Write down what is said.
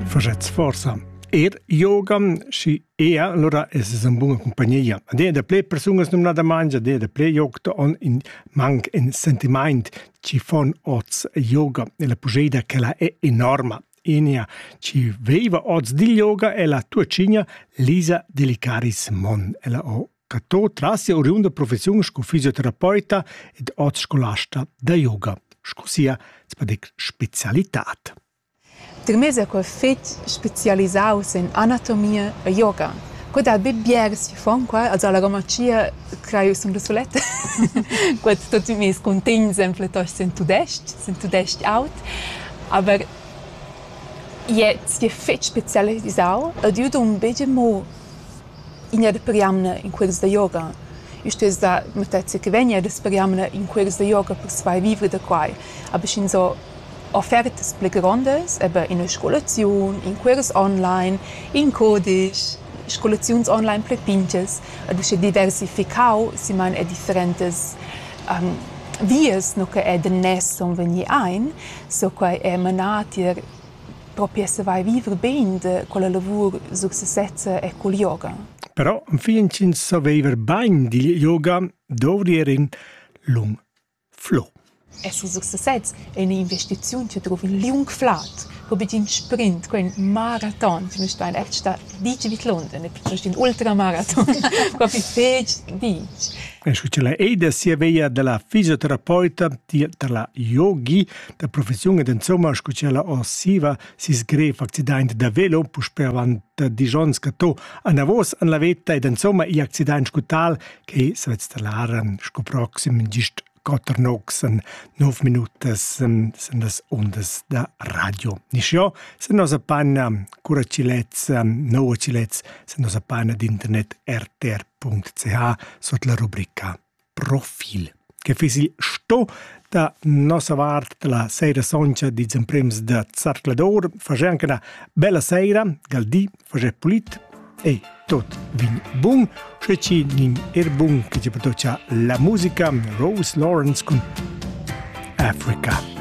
Facetz forsa. Er yoga, si ea, allora es es un buna compagnia. Ad è da ple persunas nomnada mangia, ad è da ple yoga on in manc in sentiment ci fon oz yoga e la pugeida che la è enorma. Enia ci veiva oz di yoga e la tua cigna Lisa Delicaris Mon, ella o Cato tras sia oriunda professiun sco fisioterapeuta ed oz scolasta da yoga sco sia spezialitad. Termes è quel fitg spezialisaus en anatomia e yoga. Quei dat be biars che fan qua, also alla grammacia craiu som da soletta. Quet tutti mes contents en pletost sen tudest, sen tudest aut. Aber je, si è fitch spezialisau ed io do un bege mo In'etga jamna in cuors da yoga. I stuess dar matezza che vegn ed es per jamna in cuors da yoga persvai vivre da quai. Aber sch'insò offertas pli grondas, eben ina scolaziun, in cuors online, in cudisch, scolaziuns online pli pintgas ed uschè diversificau simain er differentas vias no che er da nes sun vegni aint, so quai è manà tier propi esser vai vivre bein da quella lavur successezza e col yoga. Però enfin ch'ins saveva bain digl yoga dovri er in lung flow. Esser successets è un'investiziun che trova in liung flat, ho be in sprint, quel maraton, che noi ein echt da dici bitlond, è piuttosto un ultramaraton, proprio fetg dici. E scu ce la ei da sia veia della fisioterapeuta, della yogi, da professiun ed insomma sco ch'ella osiva sis grev accident da velo puspe avant disch onns catto anavos an la veta ed insomma i accident sco tal che svet stallaren sco proxim gist quatter nogs en nov minutas en las ondas da radio. Niscio, se nos panna cura cilets, no cilets, se nos panna d'internet rtr.ch sot la rubrica profil che fiss il sto da nossa vart dalla Seira Sontga dils emprems da Zarcladur fager anche una bella seira, gal di, fager pulit e tot vin bun, sche ci nin er bun che ci patocia la musica Rose Lawrence cun Africa.